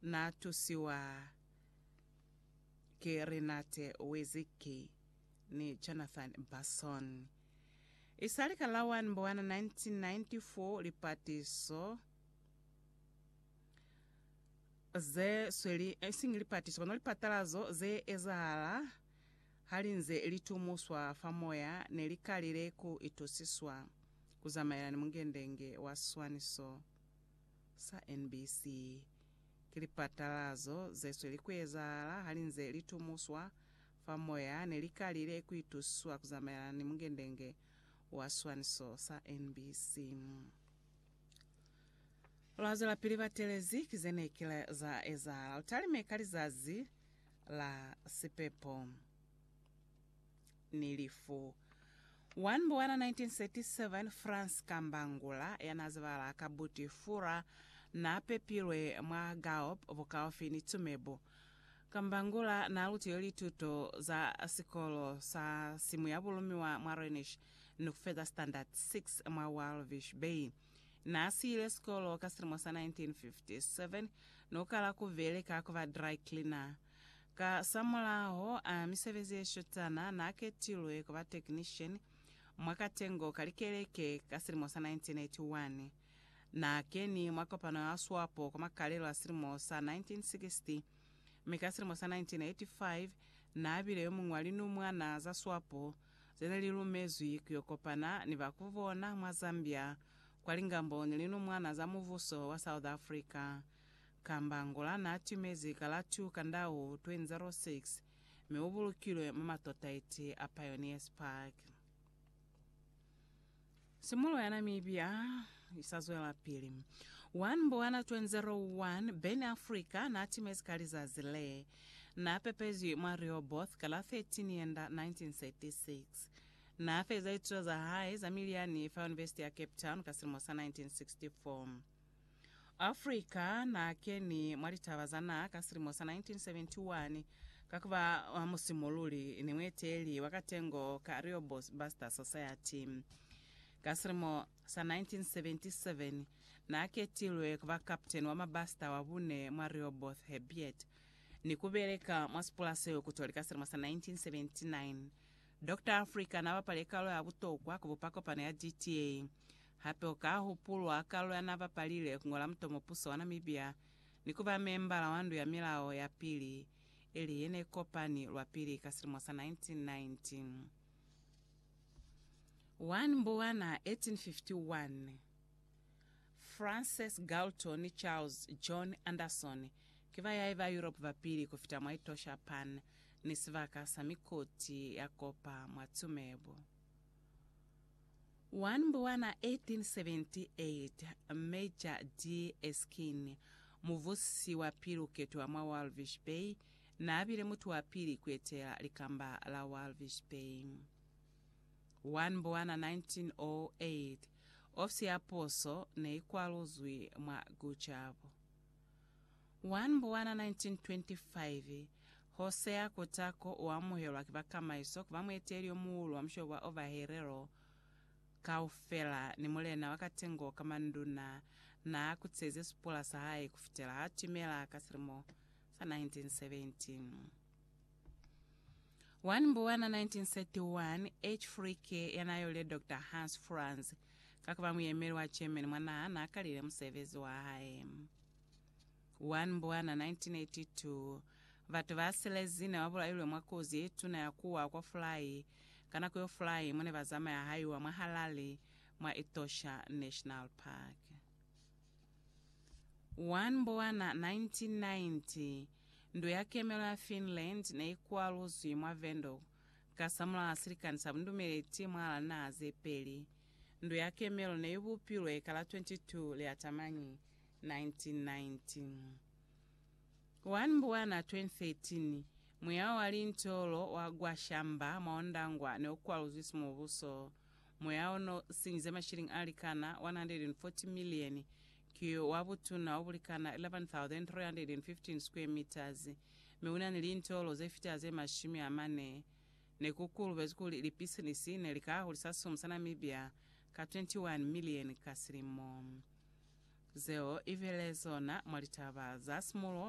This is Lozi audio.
Na tusiwa ki Renate Wizicki ni Jonathan Basson. Isali ka la 1 Mbwana 1994, lipatiso ze sweli, isiñi lipatiso, kono lipatalazo ze ezahala ha li nze li tumuswa fa moya ne li kalile ku itusiswa ku zamaelana ni mungendenge wa swaniso. sa NBC. Ki lipatalazo ze sweli ku ezahala ha li nze li tumuswa fa moya ne li kalile ku itusiswa ku zamaelana ni mungendenge wa swaniso sa NBC. Lwa zwelapili batelezi ki ze ne kile za ezahala u talime ka lizazi la sipepo. ni lifu. 1 Mbuwana 1937, Frans Kambangula, ya n'a zibahala ka buti Fura, n'a pepilwe mwa Gaop bukaufi ni Tsumebo. Kambangula n'a lutile lituto za sikolo sa simuyabulumiwa mwa Rhenish ni ku feza Standard 6 mwa Walvis Bay. N'a siyile sikolo ka silimo sa 1957 ni ku kala ku beleka ku ba dry cleaner. Kasamulaho a misebezi ye shotana, n'a ketilwe ku ba technician mwa katengo ka likeleke ka silimo sa 1981. N'a keni mwa kopano ya Swapo kwa makalelo a silimo sa 1960, mi ka silimo sa 1985 n'a bile yo muñwi wa linumwana za Swapo ze ne li lumezwi ku yo kopana ni ba ku bona mwa Zambia kwa lingambo ni Linumwana za Mubuso wa South Africa. kamba Angola n'a timezi kalatu ka ndau 2006 mi u bulukilwe mwa matotaiti a Pioneers Park. Simulo ya Namibia i sa zwelapili. Wa Mbwana 2001, Ben Africa n'a timezi ka lizazi le n'a pepezwi mwa Rehoboth ka la 13 Yenda 1936. N'a feza lituto za hae za miliyani fa Univesiti ya Cape Town ka silimo sa 1964. Africa na keni mwa litaba za naha ka silimo sa 1971 ka kuba wa musimululi ni mueteli wa katengo ka Real Buster Society. Ka silimo sa 1977 na ketilwe kuba kapteni wa mabasita wa bune mwa Real Both Hebiet ni kubeleka mwa sipula seo kutoli ka silimo sa 1979. Doctor Africa n'a bapale kalo ya butokwa ku bupa kopano ya DTA. Hape u ka hupulwa kalo ya n'a bapalile ku ngola mutomo puso wa Namibia ni ku ba membala wa Ndu ya Milao ya Pili, ili ye ne kopani lwa pili ka silimo sa 1919. 1 Mbwana 1851. Frances Galton ni Charles John Anderson ki bayahi ba Europe ba pili ku fita mwa itosha pan ni sibaka sa mikoti ya kopa mwa tumebo. Wa Nbwana 1878, Major de Esquin, muvusi wa pili ku ketiwa mwa Walvis Bay, n'a bile mutu wa pili ku etela likamba la Walvis Bay. Wa Nbwana 1908, Ofisi ya puso ne i kwaluzwi mwa Gujabu. 1 Mbwana 1925, Hosea Kutako u amuhelwa ki ba kamaiso ku ba mueteleli yo muhulu wa mushobo wa Ovaherero kaufela, ni mulena wa katengo ka manduna n'a kutezi sipula sa hae ku fitela h'a timela ka silimo sa 1917. 1 Mbuwana 1931, H. Fricke yanayolile Dr. Hans Franz ka kuba muyemeli wa Germany mwanaa naakalile musebezi wahae. 1 Mbuwana 1982, Batu ba silezine babulailwe mwa kozi yetuna ya kuwa kwa fulai ka nako yo fulai mone bazamaya haiwa mwa Harare mwa Etosha National Park. 1 Mbowana 1990, Ndo ya Kemelo ya Finland ne i kwaluzwi mwa Windhoek kasamulaho silikani sa bundumeleti mwahal'a linaha ze peli. Ndo ya Kemelo ne i bupilwe ka la 22 Liatamani 1990. 1 Mbowana 2013, Muyaho wa linto lo wa Gwashamba mwa Ondangwa ne u kwaluzwi simubuso. Moya o no sinyize mashilingi a likana 140 milieni, ki wa butuna o bulikana 11,315 square meters, mi una ni lintolo ze fita ze mashumi a mane. Ne ku kulubezi kuli lipisinisi ne li ka hulisa simu sa Namibia ka 21 milieni ka silimo. Zeo i vele zona mwa litaba za simulo.